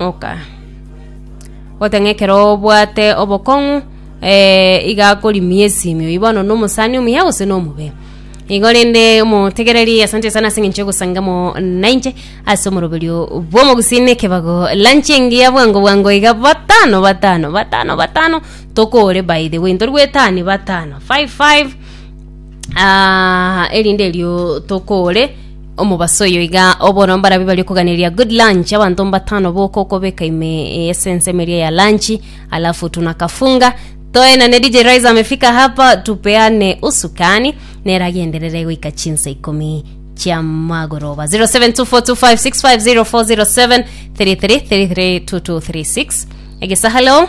Oka. Gote ng'a ekero obwate obokong'u eh, iga akorimia esimio oi bono na omosani omuya gose na omobe igo rende omotegereri asante sana ase eng'encho ogosangamo nainche ase omoroberio bw'omogusii na ekebago lunch engiya bwango bwango iga batano batano batano batano tokore by the way ntorigwetani batano five five Ah, erinde erio tokore omobaso oyo iga obono mbarabi bari kuganeria good lunch abanto mbatano boko okobeka ime ese ensemo eria ya lunch alafu tunakafunga toenane DJ Rise amefika hapa tupeane usukani neragenderere goika chinsa ikumi chia magoroba 072425650407 33332236 egesa hello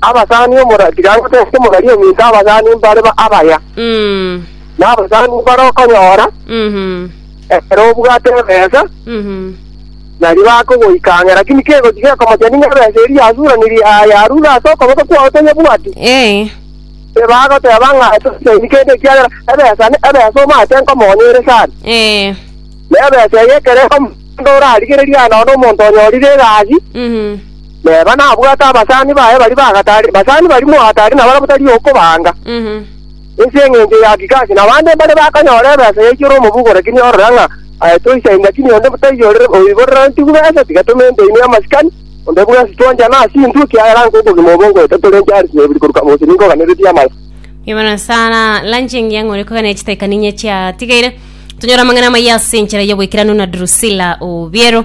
abasani omora tiga ngotebie omorari ominto abasani mbare ba- abaya, Mm. na abasani mbare okonyora, Mhm. ekero obwate ebesa, Mhm. nari bakogoikang'era, lakini kegochi gekomochani ng'a ebesa eria yasuraniri aa yarure ase okoboko kwao toyebwati, Eh. ebagoteba ng'a tosaini kende ekiagera ebesa ne- ebesa omate nkomonya ere sana. Eh. Na ebesa eye ekero ekomonya onde orarigereria noone omonto onyorire egasi, Mhm. Neba nabwate abasani baye baria ba gatari, basani barimo gatari na baria batari okobaanga. Ase engencho ya Akikasi na bande mbaria bakanyora ebesa yaikire omobugore ki niorora ng'a aye toisa inda ki nionde botaiyorire oiborerantigwe besa tiga tomente ime amasikani, onde bwensi twanchana ase intwe ekiagera nko okogima obo ngoeta torenche aris na ebiri koruka gose ninkoganeretie amaya. Imana sana lanche engiya ng'ore kogana chitaikani inye chiatigaire tonyora amang'ana amaya ase enchera y'oboikeranu na Drusilla Obiero